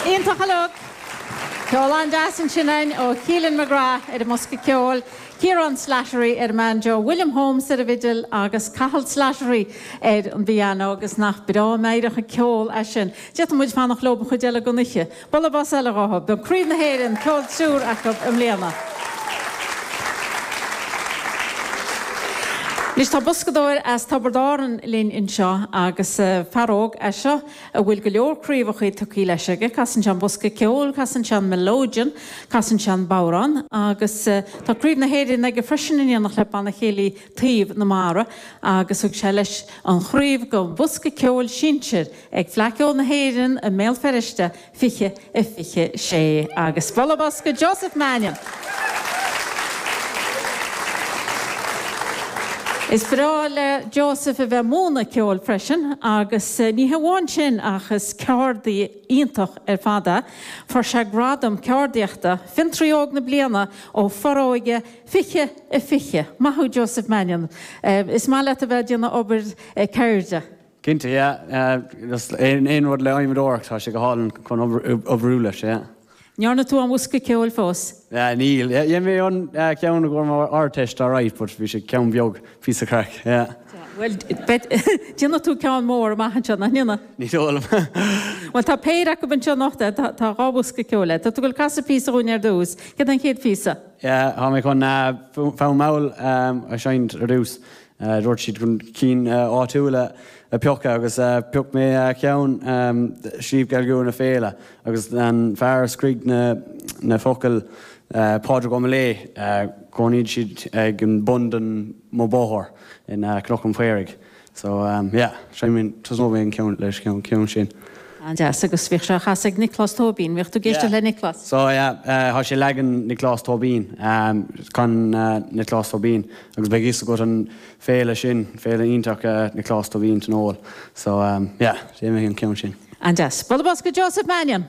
Iontach uilig! Ceol an-deas ansin uainn ó Keelan McGrath ar an mbosca ceoil, Kieran Slattery ar an mbanjo, William Holmes ar an bhfidil agus Cathal Slattery ar an bpiano agus nach breá meidhreach an ceol é sin. D'fhéadfadh muid fanacht leo an chuid eile den oíche. Bualadh bos eile dóibh. Dhá Chraobh na hÉireann Ceol Triúr acu i mbliana. Anois tá boscadóir as Tiobraid Árann linn anseo agus fear óg é seo a bhfuil go leor craobhacha tugtha leis aige. Casann sé an bosca ceoil, casann sé an melodeon, casann sé an bodhrán agus tá Craobh na hÉireann aige freisin in éineacht le Banna Céilí Taobh na Mara agus thug sé leis an chraobh don Bhosca Ceoil Sinsir ag Fleadh Ceoil na hÉireann i mBéal Feirste 2026 agus bualadh bos do Joseph Mannion! Is breá le Joseph a bheith ag múineadh ceoil freisin agus ní hamháin sin ach is ceardaí iontach ar fad é. Fuair sé gradam ceardaíochta, Fiontraí Óg na Bliana ó Foróige, 2020. Maith thú Joseph Mannion. Is maith leat a bheith ag déanamh obair ceirde. Cinnte, yeah. Aon rud le hadhmadóireacht, tá sé go hálainn chun oibriú leis, yeah. An ndearna tú aon bhosca ceoil fós? Níl. Dhein mé an ceann i gcomhair mo Ardteist alright but bhí sé ceann beag, píosa craic, yeah. Bhuel, déanfaidh tú ceann mór amach anseo, nach ndéanfaidh? Ní dóigh liom. Bhuel, tá péire acu anseo anocht, tá dhá bhosca ceoil. Tá tú ag casadh píosa dhúinn ar dtús. Céard é an chéad phíosa? Yeah, tá mé chun fonn mall a sheinnt ar dtús. Dúirt siad chun cinn áitiúla a phiocadh agus phioc mé ceann Sliabh Geal gCua na Féile agus an fear a scrígh na focail Pádraig Ó Miléadh, chónaigh siad ag an bun den mo bhóthar in Cnoc an Phaoraigh. So, yeah, tosnóidh mé an ceann, leis an ceann sin. An-deas, agus bhíodh sé á chasadh ag Nioclás Tóibín, bhíodh tú ag éisteacht le Nioclás? Yeah, so yeah, tá sé leagan Nioclás Tóibín, chan Nioclás Tóibín, agus beidh fhios agat an féile sin, féile iontach Nioclás Tóibín Tionól, so yeah, déanfaidh mé an ceann sin. An-deas. Bualadh bos do Joseph Mannion!